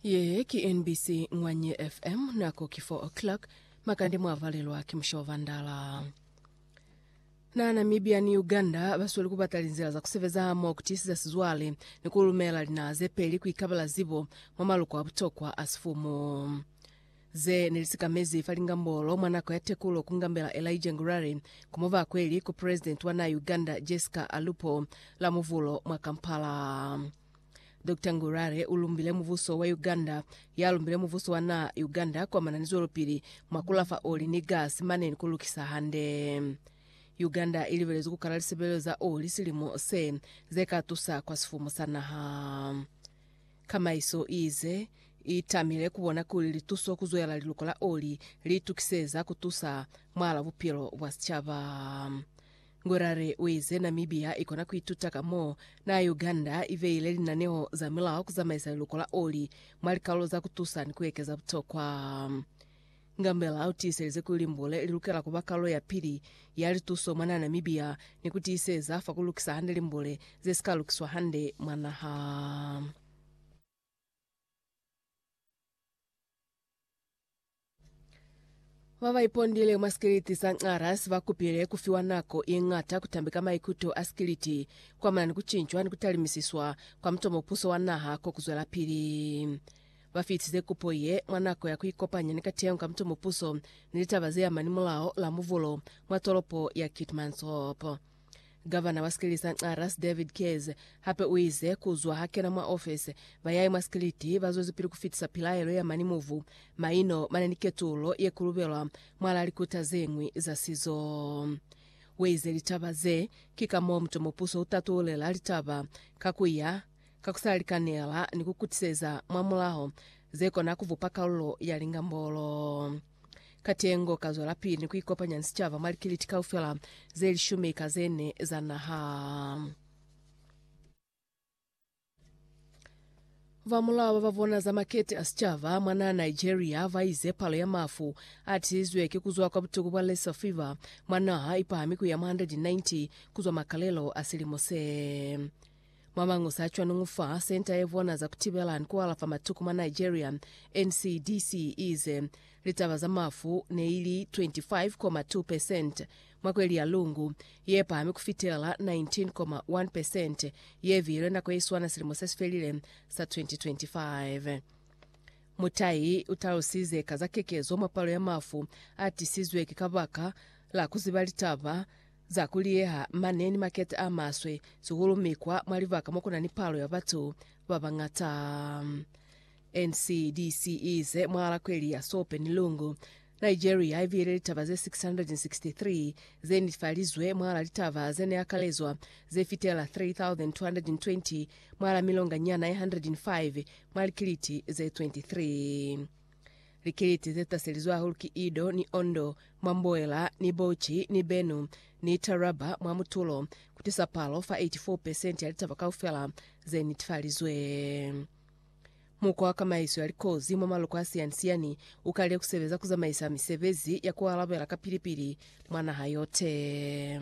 Ye ki NBC Ngwanye FM, nako ki 4 o'clock, makande mwa valelwa ki musha wa Vandala. Na Namibia ni Uganda basweli kubata linzila za kusebeza hamo kutisiza sizwale ni kulumela linaha zepeli kuikabela zibo mwa maluko a butokwa a sifumu. Ze ne li sikamezi fa lingambolo mwa nako ya tekulo ku ngambela Elijah Ngurari ku mubakweli ku President wa naa Uganda Jessica Alupo la Muvulo mwa Kampala. Doctor Ngurari u lumbile mubuso wa Uganda, ya lumbile mubuso wa naa Uganda kuamana ni zwelopili mwa ku lafa oli ni gasi mane ni ku lukisa hande. Uganda i libelezwi ku kala lisebelelo za oli silimo se, ze ka tusa kwa sifumu sa naha. Kamaiso iize itamile kubona kuli lituso kuzwela liluko la oli liitukiseza kutusa mwala bupilo bwa sicaba. Ngwerare uize Namibia ikona kuituta ka mo na Uganda ibeile linaneo za milao kuzamaisa liluko la oli mwa likaulo za kutusa ni kuekeza butokwa. Ngambela u tiiselize kuli limbule li lukela ku ba kalulo ya pili ya lituso mwa naha Namibia ni ku tiiseza fa ku lukisa hande limbule ze si ka lukiswa hande mwa naha. Ba ba ipondile mwa sikiliti sa Nxarras ba kupile ku fiwa nako ye ñata ku tambeka maikuto a sikiliti ku amana ni ku cincwa ni ku talimisiswa kwa mutomo puso wa naha ko ku zwelapili. Ba fitize kupo ye mwa nako ya ku ikopanya ni kateho ka mutumo puso ni litaba ze amani mulao la muvulo mwa tolopo ya Keetmanshoop. Gavana wa sikilisa Nxa Ras David Keyes hape u ize ku zwa ha kena mwa ofesi, ba yae mwa sikiliti ba zwezipili ku fitisa pilaelo ya mani muvu maino mane ni ketulo ye kulubelwa mwalaa likuta ze ñwi za sizo. Weize litaba ze ki ka moo mutumo puso u tatulela litaba ka ku ya ka ku sa likanela ni ku kutiseza mwa mulaho ze kona ku bupa kalulo ya lingambolo. Katengo ka zwelapili ni ku ikopanya ni sicaba mwa likiliti kaufela ze lishumi ka ze ne za naha. Ba mulao ba ba bona za makete a sicaba mwa naha Nigeria ba ize palo ya mafu a tizizwe ki ku zwa kwa butuku bwa Lassa fever mwa naha i pahami ku ya mwa 190 ku zwa makalelo a silimo se. Mwa mañusi a cwanuñu fa Senta ye Vona za Kutibela ni Kualafa Matuku mwa Nigeria, NCDC iize litaba za mafu neili 25.2 percent mwa kweli ya Lungu, ye pahami kufitela 19.1 percent ye viilwe nako ye swana silimo se si felile sa 2025. Mutai utalusize ka za kekezo mwa palo ya mafu a tisizwe ki kabaka la kuziba litaba Za kuliyeha mane ni makete a maswe, sihulu mikwa mwa libaka mo ku na ni palo ya batu ba bañata. NCDC i ize mwa lakweli ya Sope ni Lungu, Nigeria i bile litaba ze 663 ze netefalizwe mwalaa litaba ze ne akalezwa ze fitela 3,220 mwalaa milonganyana ye 105 mwa likiliti ze 23. Likiliti ze taselizwe hahulu ki Edo ni Ondo, mwa Mboela, ni Bauchi, ni Benue, ni Taraba, mwa mutulo, ku tisa palo fa 84 pesenti ya litaba kaufela ze netifalizwe. Mukwa wa kamaiso ya likozi mwa maloko a siyani-siyani u kalile ku sebeza ku zamaisa misebezi ya ku alabela kapili-pili mwa naha yote.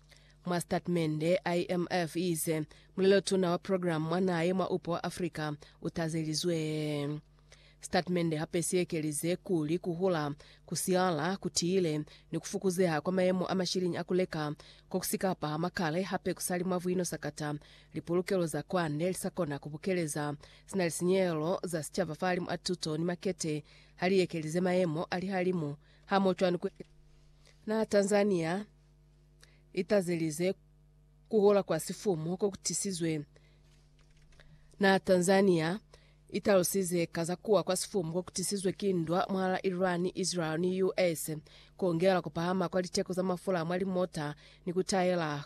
Mwa sitatimende, IMF iize mulelotuna wa program mwa naha ye mwa Upo wa Africa utazelizwe. Sitatimende hape siekelize kuli kuhula, kusiala, kutiile, ni kufukuzeha kwa mayemo a mashiliñi a kuleka kokusika pahama kale hape kusali mwa buino sakata lipulukelo za kwande lisakona kubukeleza sina lisinyehelo za sicaba fahalimu a tuto ni makete haliekelize mayemo alihalimu hamoho cwani ku naha Tanzania itazelize kuhola kwa sifumu kokutisizwe na Tanzania italusize kaza kuwa kwa sifumu kokutisizwe ki ndwa mwala Iran, Israel ni US kongela kupahama kwa liteko za mafula mwa limota ni kutayela